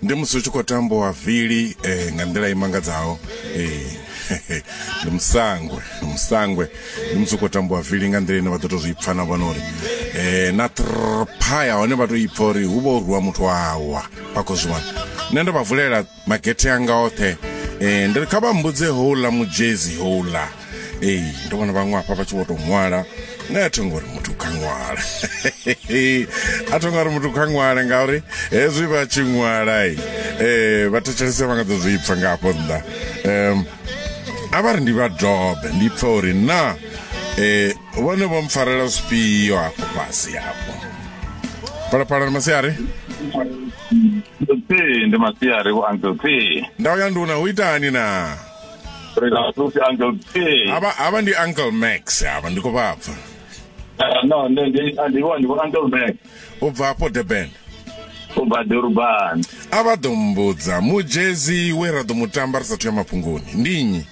ndi musi hu tshi khou tambiwa vili eh, nga nḓila i mangadzaho eh, ndi musangwe ndi musangwe ndi musi hu khou tambiwa vili nga nḓila ine vha ḓo to zwi pfa na vhona uri eh, na trpaya hone vha to ipfa uri hu vha u rwiwa muthu awa vha khou zwi wana nṋe ndo vha vulela magethe anga oṱhe um ndi ri kha vha mbudze houḽa mujezi houḽa ee ndo vhona vhaṅwe afha vha tshi vho tou ṅwala nṋe a thongo uri muthu kha ṅwala a thongo uri muthu kha ṅwale ngauri hezwi vha tshi ṅwala um eh, vha thetshelese vha nga ḓo zwi pfa nga afho nnḓa um a vha ri ndi vha dobe ndi pfa uri na um vhone vho mpfarela zwifhio hafho fhasi hafho phalaphala ni masiari ee ndi masiari vho uncle t ndau ya nduna hu itani na rasusi uncle t hava hava ndi uncle max hava ndi khou vha pfa ah, no ndi ndi ah, ndi vho ndi vho uncle max u bva afho durban u bva durban a vha ḓo mbudza mujezi we ra ḓo mu tamba ri sathu ya mafhungoni ndi nnyi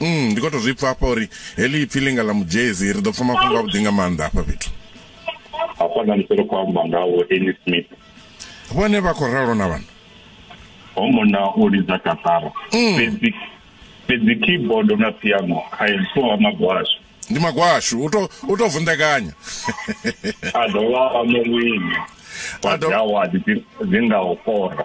Mm, ndi khou tou zwi pfa hafha uri heḽi ipfi ḽinga ḽa mujezi ri ḓo pfa mafhungo a vhuḓi nga maanḓa hafha fhethu hafha na ndiselo khou amba nga vho Annie Smith vhone vha khou ralo na vhana ho mona o lidza katara mm. fhedzi fhedzi keyboard na piano kha ipfo ha magwashu ndi magwashu u to u to vunḓekanya a dovha a murwini wa dzi award dzi nga u kora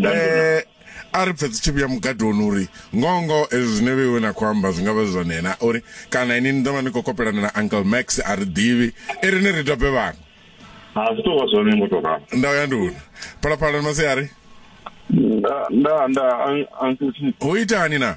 Eh, a ri pfe dzi tshi vhuya mugadoni uri ngoho ngoho ezwi zwine vheiwe na khou amba zwi nga vha zwi zwone na uri kana ini ni ḓo vha ni khou kopelana na uncle max a ri ḓivhi i ri ni ri dobe vhaṅwe ha zwi tou vha zwone ngo tou ralo nda u ya nduna phalaphala ni masiari nda nda nda an- uncle chief ho itani na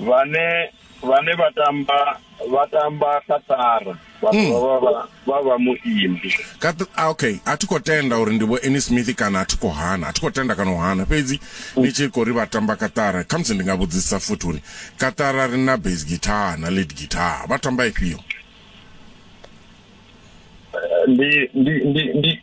Vhane vhane vha tamba vha tamba kaṱara vha hmm. dovha vha vha vha muimbi ah, okay a thi khou tenda uri ndi vho Annie Smith kana a thi khou hana a thi khou tenda kana u hana fhedzi hmm. ni tshi khou ri vha tamba kaṱara khamusi ndi nga vhudzisa futhi uri kaṱara ri na bass guitar na lead guitar vha tamba ifhio eh, ndi ndi ndi ndi